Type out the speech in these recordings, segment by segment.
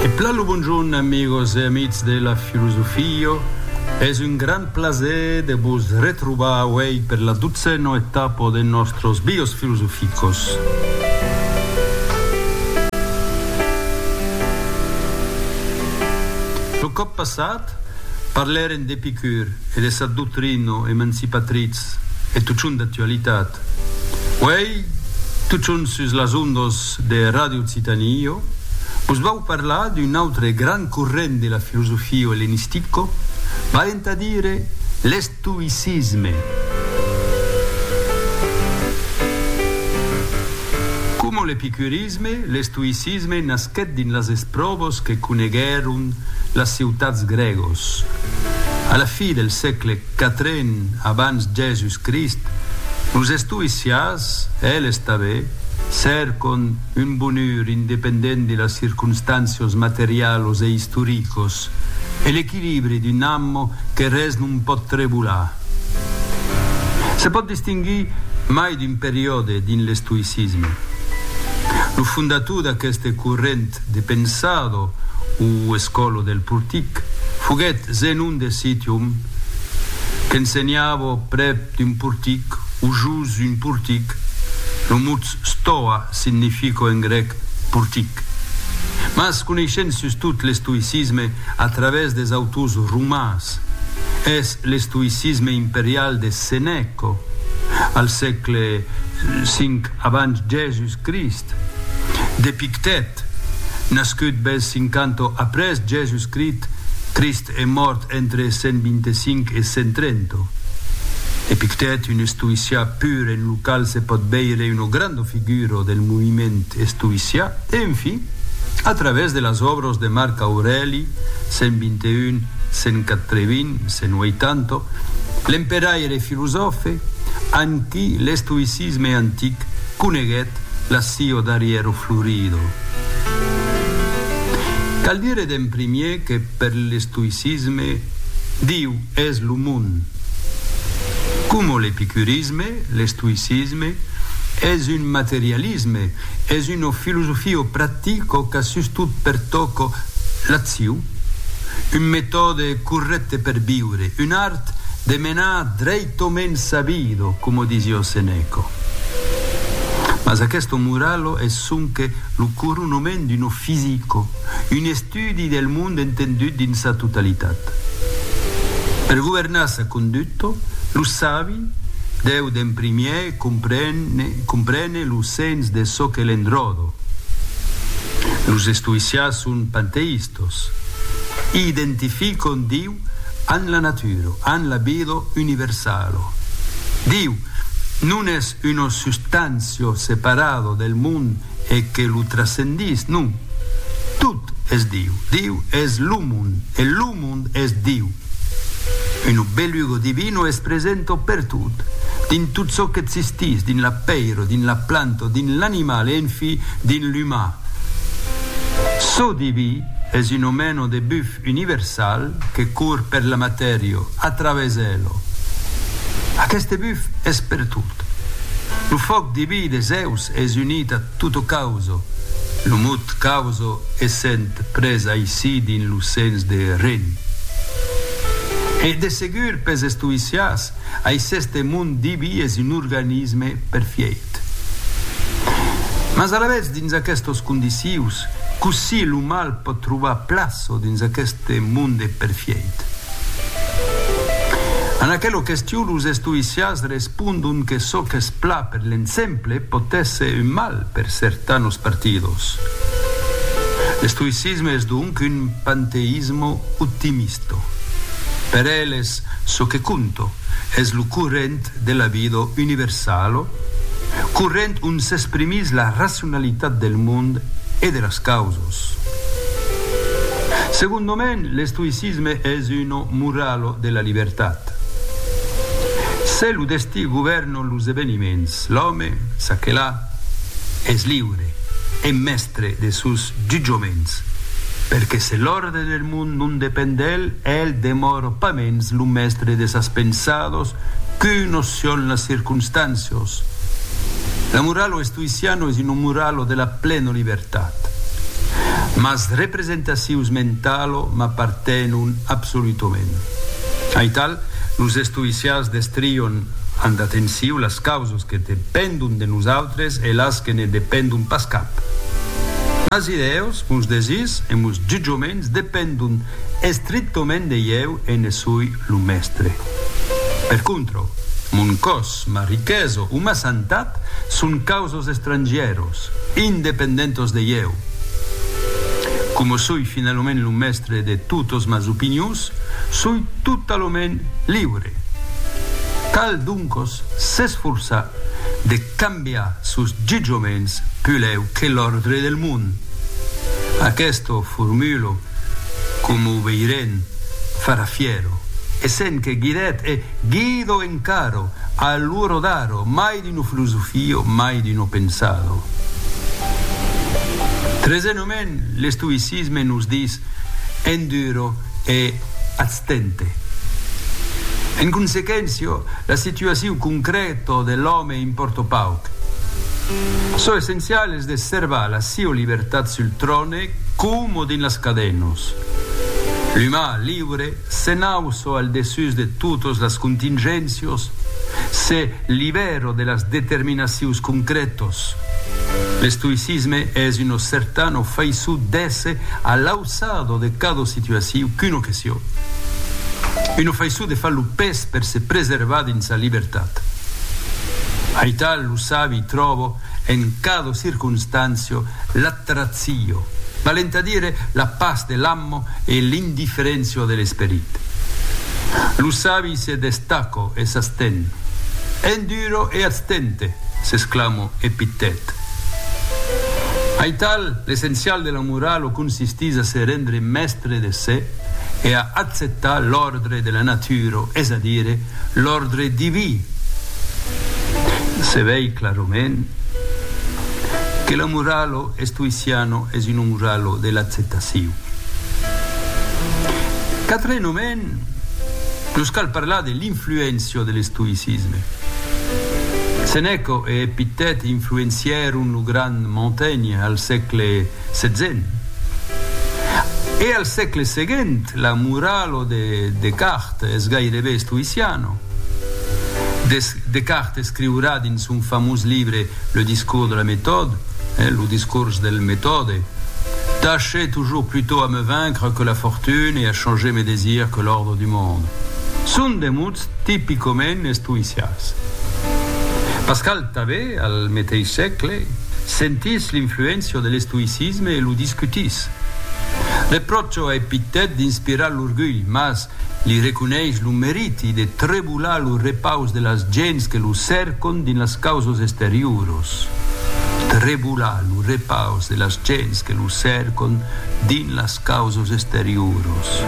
E plan lo bonjorn amigos e amics de la filosofio, es un grand plaser de vos retrobar auei per la dotzena etapa de nostros bios filosoficos. Lo còp passat parlèrem d'Epicur e de sa doctrina emancipatriz Res, e totjorn d'actualitat. Uèi, totjorn sus las ondas de Ràdio Occitanie, jo vos vau parlar d'un autre grand corrent de la filosofia ellenistica, valent a dire l'estoïcisme. Coma l'epicurisme, l'estoïcisme nasquèt dins las espròvas que coneguèron las ciutats grègas a la fi del sègle. Quatre en abans Jèsus Crist, los estoïcias, eles tanben, cèrcon un bonur independent de las circonstàncios materialos e istoricos e l'equilibri d'un amo que res non pòt trebolar. Se pòt distinguir mai d'un periòde dins l'estoïcisme. Lo fondator d'aqueste corrent, de pensado o escolo del portic, foguèt Zenon de Citium qu'ensenhava prèp d'un portic o jos un portic, lo mot stoa significa en grèc portic. Mas coneishent sustot l'estoïcisme a travèrs des autors romans, es l'estoïcisme imperial de Senèca al sègle V, Abans Jèsus Crist. D'Epictèt, nascut bèth 50 après Jèsus Crit, Crist e mòrt entre 125 e 130. Epictèt, un estoïcià pur en lo qual se pòt veire una granda figura del moviment estoïcià, e enfin, a travèrs de las òbras de Marc Aurèli, 121, 180, 180, l'emperaire e filosòfe, amb qui l'estoïcisme. L'isme antic coneguèt l'assio d'arriero florido. Cal dire d'en primier que per l'estoïcisme Diu es lo mond. Coma l'epicurisme, l'estoïcisme es un materialisme, es una filosofio practico qu'a sustot pertoco l'assiu. un metòde corrècte per viure, un art de menar dreit o mens sa vida, coma disiá Seneca. Mas aquesta morala es sonque lo coronament d'un offizico, un estudi del mond entendut dins sa totalitat. Per governar sa conduta, lo sabi deu d'en primièr Comprene lo sens de çò que l'enròdo. Los estoïcians son panteïstas. Identificon Diu amb la natura, amb la vida universala. Diu non es una substància separada del mond e que lo trascendís, non, tot es Diu, Diu es lo mond e lo mond es Diu. Un obelugo divino es presento pertot, dins tot çò qu'existís, dins la pèira, dins la planta, dins l'animal e enfí dins l'umà. Çò diví es un omeno de buf universal que cour per la matèria, a través ela. Aqueste buf es pertot. Lo fòc diví de Zèus es unit a Tuto Causo, lo mot causo essent pres aicí dins lo sens de ren. E de segur pels estoïcians, aiceste mond diví es un organisme perfièit. Mas alavetz dins aquestos condicius, cossí lo mal pòt trobar plaço dins aqueste monde perfièit? En aquela question los estoïcians Respondon que çò qu'es pla per l'ensemble pòt èsser un mal per certanos partidos. L'estoïcisme es donc un panteismo optimisto. Per eles çò que conto es lo corrent de la vida universalo, corrent ont s'exprimís la racionalitat del mond e de las causas. Segondament, l'estoïcisme es una moralo de la libertat. Cat. Se lo destí govèrnon los eveniments, l'òme, ça que la, es liure e mèstre de sos jutjoments, perque se l'òrde del mond non depend d'el, el demòro pas mens lo mèstre de sas pensados qu'u nocion las circonstàncios. La moralo estoïciano es una moralo de la plena libertat. Mas representacions mentalo m'apartenon absolutament. Aital, los estoïcians destrion amb atenciu las causas que dependon de nosautres e las que ne dependon pas cap. Mas ieu, mos desirs e mos jutjaments dependon estrictament de ieu e ne soi lo mèstre. Per contra, mon còs, ma riquesa o ma santat son causas Los estrangièros, independentos de ieu, coma soi finalament lo mèstre de totos mas opinions, soi totalament liure. Cal doncos s'esforçar de cambiar sos jutjaments pulèu que l'òrdre del mond. Aquesto formulo, coma o veirem, farà fièro e sent que guidèt e guido encaro a lo rodaro mai D'uno filosofio mai d'uno pensado. Tresenument, l'estoïcisme nos dis, Enduro e atstente. En consequéncia, la situaciu concrèta de l'òme impòrta pauc. Çò essencial es de servar la siua libertat sul tròne coma dins las cadenas. L'umà liure Se n'auço al dessús de totes las contingéncios, se libèro de las determinacions concrètos. L'estoïcisme es una certana faiçon d'èsser a l'auçada de cada situacion qu'una question, una faiçon de far lo pes per se preservar dins sa libertat. Aital lo sabi tròba en cada circonstància la. Ratio, valent a dire la pas de l'ammo e l'indifferentio de l'esperit. Lo sabi se destaco e s'asten. Enduro e atstente! s'exclamo Epictet. Aital, l'essencial de la morala o consistís a se rendre mèstre de se e a acceptar l'òrdre de la natura, es a dire, L'òrdre diví. Se vei clarament que lo moralo estoiciano es un moralo de l'acceptacion. Quatrenaument, nos cal parlar de l'influéncia de l'estoïcisme. Senèca e Epictèt influencièron lo grand Montaigne al sègle. Setzen. E al sègle seguent la moralo de Descartes es gairebe estoïciano. Descartes escriurà dins son famós libre Le discours de la méthode, Lo discors del metòde, Tachez toujours plutôt à me vaincre que la fortune et à changer mes désirs que l'ordre du monde. Son de mots tipicament estoïcians. Pascal. Tanben, al meteis sègle, sentís l'influéncia de l'estoïcisme e lo discutís. Repròcha a Epictèt d'inspirar l'orgulh, mas li reconeis lo meriti de trebolar lo repaus de las gents que lo cèrcon dins las causas exterioras. Trebolar lo repaus de las gents que lo cèrcon dins las causas exterioras.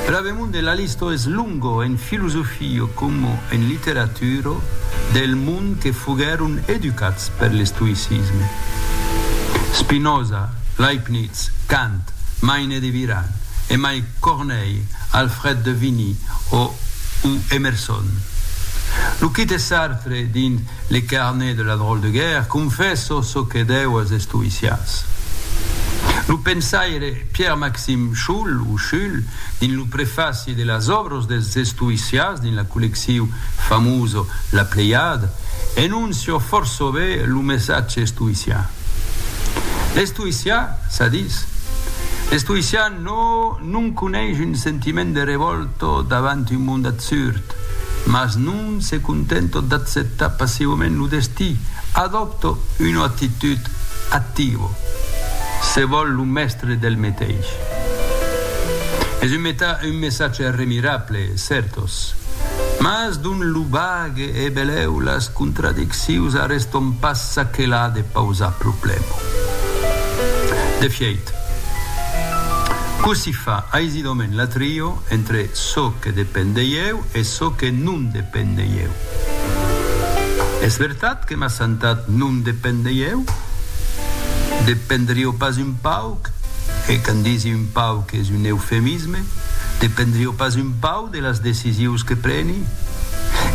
Era demon de la lista es longa en filosofia. Io como en literatura del mond que foguèron educats per l'estoïcisme, Spinoza, Leibniz, Kant, Maine de Biran, e mai Corneille, Alfred de Vigny o Emerson. Lo quite Sartre dins Le carnet de la drôle de guerre confèssa çò que deu als estoïcians. Lo pensaire Pierre-Maxime School, o Schull, dins lo prefaci de las òbras, Los dels estoïcians dins la collecciu famós La Pleiade enoncio fòrça be lo messatge estoïcian. L'estoïcian, ça dis, l'estoïcian no, non coneish un sentiment de revòlta davant un mond absurd, mas non se contenta d'acceptar passivament lo destí, adòpta una actitud activa, se vòl lo mèstre del meteis. Es un un messatge remirable, certos. Mas dont lo bag e beleu las contradiccius arreston pas çaquelà de pausar problèma. De fièit, cossí fa aisidament la trio entre çò que depend de ieu e çò que non depend de ieu? Es vertat que m'assantat non depend de ieu? Dependrió pas un pauc, e quand disi un pauc es un eufemisme, L'autonomisme dependrió pas un pauc de las decisius que preni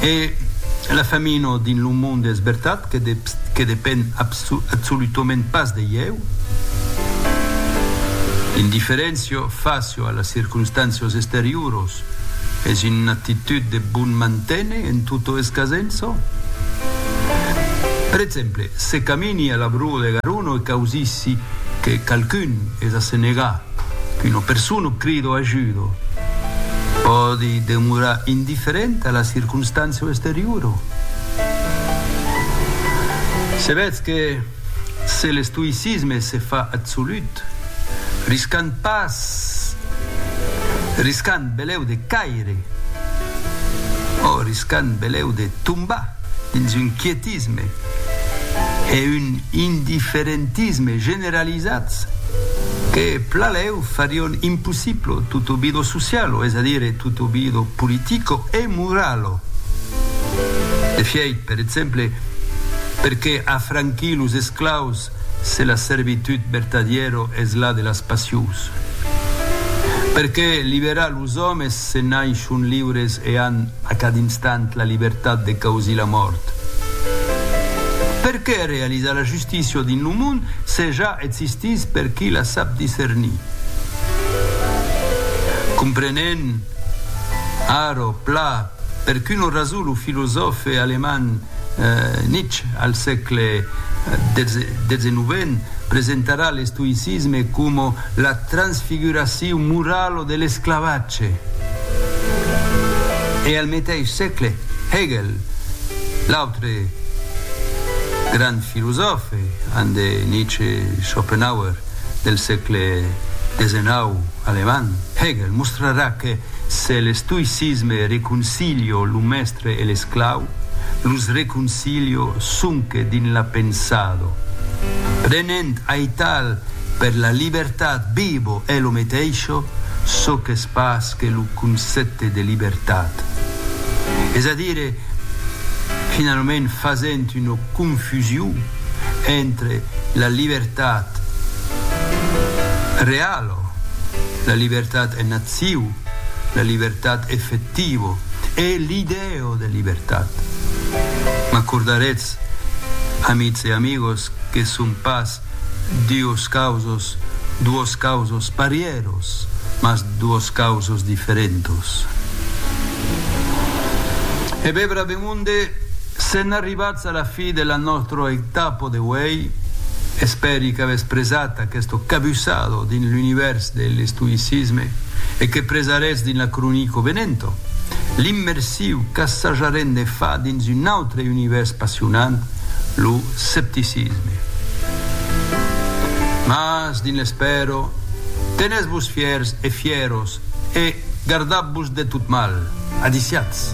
e la famina dins lo monde es vertat que depend absolutament pas de ieu. L'indiferéncia fàcia a las circonstàncias exterioras es una actitud de bon manténer en tota escasença. Per exemple, se camini a la brua de Garona e causissi que qualqu'un es a se negar Qu'una persona crida o ajuda pòdi demorar indifferenta a la circonstància o exteriora. Se vètz que se l'estoïcisme se fa absolut, riscant pas, riscant belèu de caire o riscant belèu de tombar. dins un quietisme e un indiferentisme generalizats que, pla lèu, farion impossiblo tot o bido socialo, es a dire tot o bido politico e moralo. D'efièit, per exemple, perqué afranquir los esclaus Se la servitud vertadièro es la de las passions, per qué liberar los òmes se n'ai son liures e an a cada instant la libertat de causir la mòrt? Per qué realizar la justícia dins lo mond se ja existís per qui la sap discernir? Comprenent, arò, pla, Per qu'una rason lo filosòfe alemand Nietzsche al sègle xix presentarà l'estoïcisme coma la transfiguracion morala de l'esclavatge e al meteis sègle Hegel, l'autre grand filosòfe an de Nietzsche Schopenhauer del sègle xix alemand, Hegel mostrarà que Se l'estoïcisme reconcilio lo mèstre e l'esclau, los reconcilio sonque dins la pensado. Prenent aital per la libertat vivo e lo meteisho, çò qu'es pas que lo concèpte de libertat. Es a dire, finalament fasent una confusion entre la libertat reala, Però, la libertat en acciu, la libertat effectiva e l'idèa de libertat. M'acordaretz, amics e amigos, que son pas duos causos, duos causos parièros, mas duos causos diferentos. E vebrà de monde se'n Arribats a la fi de la nòstra etapo de uèi, espèri qu'avètz presat aqueste cabussado dins l'univèrs de l'estoïcisme e que presaretz dins la cronico venenta. L'immersiu qu'assajarem de far dins un autre univèrs passionant, lo scepticisme. Mas, dins l'espèra, tenètz-vos fièrs e fièros e gardatz-vos de tot mal. Adiciatz!